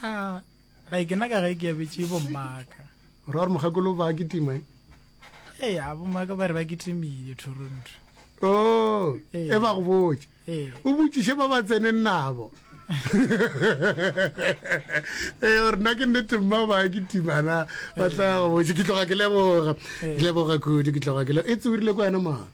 A ga ke na ka ge ke abetše bomaka. O ra gore mokgekolo ba kitima e? Ee, a bomaka ba re ba kitimile Toronto. O, e ba go botše. O botšiše ba ba tseneng nabo. Ee, gore nna ke nnete mma ba kitimana ba tla go botše. Ke tloga ke leboga, ke leboga kudu, ke tloga ke leboga. E tsewirile kwa yena mara.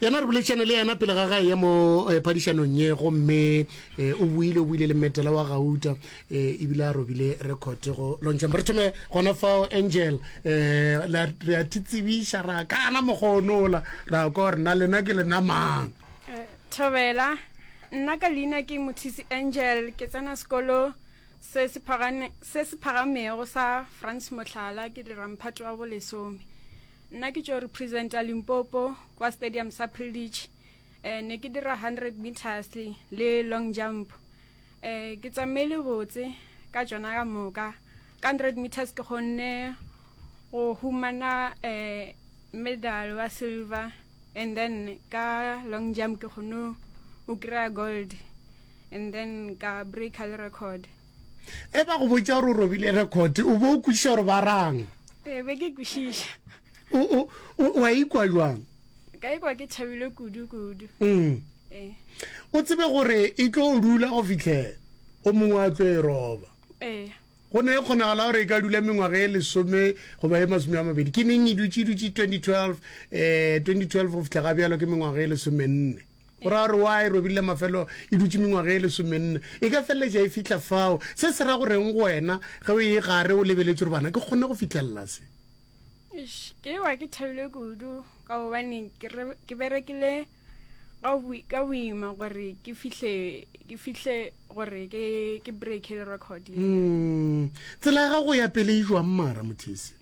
yena re boledišane le yena pele ga gae ya mo eh, phadišanong ye gomme eh, o buile o buile le metela wa gauta eh, ebile a robile record go lontšhemba re thome gona fao angel um re a thitsebiša ra kana mokgonola ra kwa gore na lena ke lena mang eh, thobela nna ka leina ke mothisi angel ke tsena sekolo se se phagamego sa france motlhala ke diramphato wa bolesome Nna ke tšo representa Limpopo kwa stadium sa Privilege. Eh, ne ke dira 100 meters le long jump. Eh, ke tsamaile botse ka tšona ka moka. Ka 100 meters ke kgonne go humana eh, medal wa silver and then ka long jump ke kgonne go kry gold and then ka breaker le record. Ge ba go botša gore o robile rekhote, o be o kwešiša gore ba rang? Ee, be ke kwešiša. Wa ikwa jwang? Ka ikwa ke thabile kudu-kudu. Mm. Ee. O tsebe gore e tlo o dula go fitlhela o mongwe a tlo e roba. Ee. go ne e kgonagala gore e ka dula mengwaga e lesome goba e masome a mabedi ke neng e dutse e dutse 2012 um 2012 go fitlha ga bjalo ke mengwaga e lesomenne o ra gore wa e robile mafelo e dutse mengwaga e lesomenne e ka feleletša e fitlha fao se se ra go reng go wena ge o e gare o lebeletse gore bana ke kgone go fitlhelela se ke wa ke thabile kudu ka gobane ke berekile ka boima gore ke fihle ke fihle gore ke ke break le record mm tsela ga go ya pele e jwa mmara mothese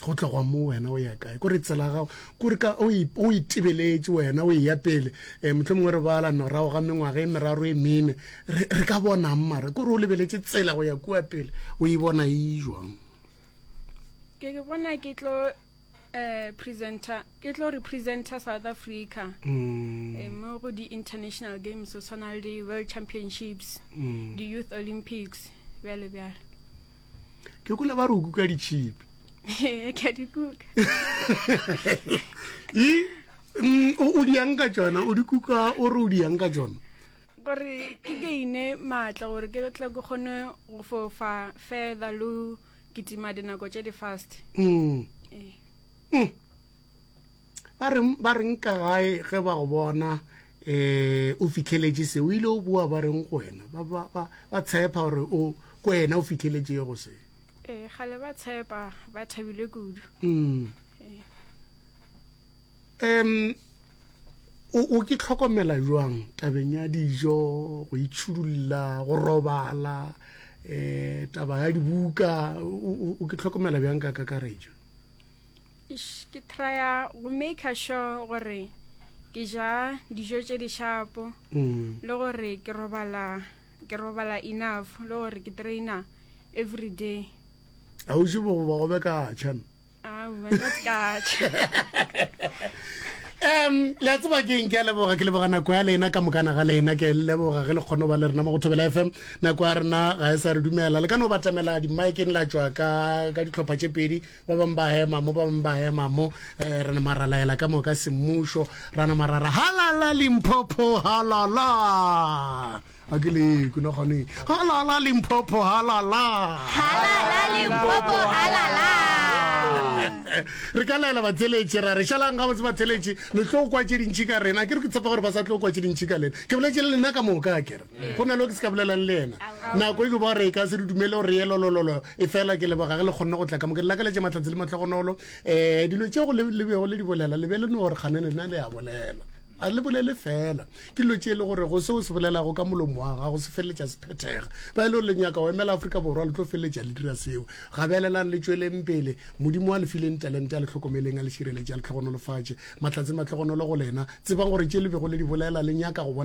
go tlogwa mo wena o ya kae kore tsela gago kore ka o itebeletše wena o eya pele um motlho mongwe re bala norago ga mengwaga e meraro e mene re ka bonang mara kore o lebeletše tsela go ya kua pele o e bona e jwang ke ke bona ke tlo um presenter ke tlo representer south africa mm. eh, mo go di-international games o tshwana le di-world championships mm. di-youth olympics bjale bjale ke kula ba re o kuka ditšhipi ke a di kuka mm, o diyang ka tsona o di kuka o re o diyang ka tsona gore ke gaine maatla gore ke tla ke kgone go fofa further lo kitima dinako tše di fast mm. Eh. Mm. ba reng ba reng ka gae ge ba go bona eh o fitlheletše se o ile o bua ba reng go wena ba ba ba ba tshepa gore o ko wena o fitlheletše go se ee gale ba tshepa ba thabile kudu mm em o o ke tlhokomela jwang tabeng ya dijo go itšhudulla go robala eh taba ya dibuka o o- o ke tlhokomela bjang ka kakaretšo ke trya go maker sure gore ke ja dijo tše di shapo mm. le gore ke robala ke robala enough le gore ke traina every day a o je bogoba go be ka tšhan um le tseba ke nke leboga ke leboga nako ya lena ka mokana ga lena ke leboga ge le kgone ba le rena mo go thobela fm nako ya rena ga e sa re dumela le ka no batamela dimaekeng la tswa ka ditlhopha tše pedi ba bangwe ba hema mo ba bangwe ba hema mo um re nama ra laela ka moka semmušo ra nama ra ra halala limphopho halala a ke le kuna kgone halala limphopho halala halala limphopho halala re ka laela batheletši ra re šalang ga botse batheletši le tlo kwa tše dintšhi ka rena ke re ke tshepa gore ba sa tlo kwa tše dintšhi ka lena ke boletše le lena ka moka kere go na le ke se ka bolelang le ena nako e ke ba re e ka se re dumele gore ye lolololo e fela ke leboga ge le kgonne go tla ka moke lakaletše mahlatse le matlhogonolo um dilo tšego le bego le di bolela le be le no gore kgane lena le a bolela a le bolele fela ke dilo tše e le gore go seo se bolelago ka molomo wa gago se feleletša se phethega ba e le gore le nyaka go emela aforika borwa le tlo feleletša le dira seo gabelelang le tšweleng pele modimo a le fileng talente a le tlhokomeleng a le šireletše a le tlhogonolofatše mahlatse matlhogonolo go lena tsebang gore tše le bego le di bolela le nyaka go bona